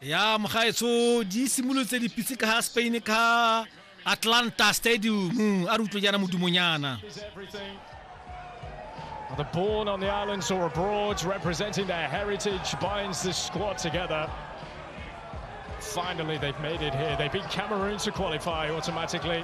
ya mogaetsho di simolotse dipitse ka ga spain ka atlanta stadium a re utlwe jaana modumonyana Whether born on the islands or abroad, representing their heritage binds this squad together. Finally, they've made it here. They beat Cameroon to qualify automatically.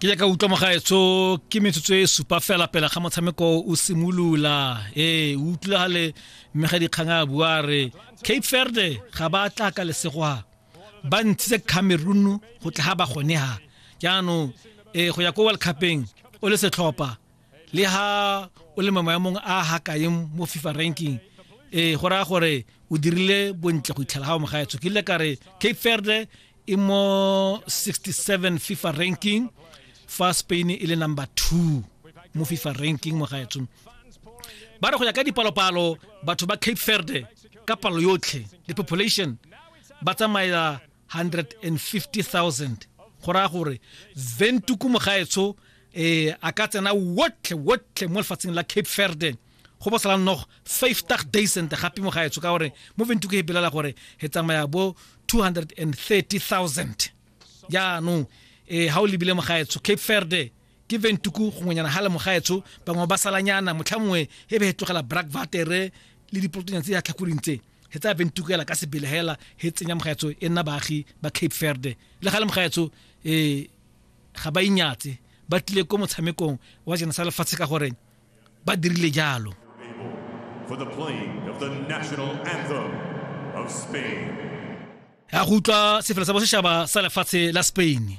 ke jaaka utlwa mogaetso ke metsotso e supa fela pele ga motshameko o simolola ee o utlwagale mme ga dikgang a bua re cape verde ga ba tla ka lesegwa ba ntshitse cameroon go tla ga ba gone ha jaanong um go ya ko world cupeng o le setlhopha le ha o le mamayamong a gakaeng mo fifa ranking um go raya gore o dirile bontle go itlhela ga o mogaetsho ke ile ka re cape verde e mo 67 fifa ranking fa spain e le number two mo fifa ranking mogaetsho ba re go ya ka dipalopalo batho ba cape verde ka palo yotlhe le population ba tsamaela 150000 go raya gore zentuku mogaetsho um eh, a ka tsena wotlhe wotlhe mo lefatsheng la cape verde go bo sala nnogo five tag daysent gape mo gaetsho ka gore mo ventu ke epelela gore he tsamaya bo 230000 jaanong e ga o lebile mo gaetsho cape verde ke ventuku gongwenyana ga le mo gaetsho bangwe ba salanyana motlha mongwe e be he tlogela brack vatere le dipolotonyana tse ya tlhakoring tse he tsa bentukela ka sebele hela he tsenya mogaetso e nna baagi ba cape verde le ga le mogaetso um ga ba inyatse ba tlile ko motshamekong wa jena sa lefatshe ka gore ba dirile jalo for the playing of the national anthem of Spain. ya go utlwa sefela sa bosetšhaba sa lefatshe la spain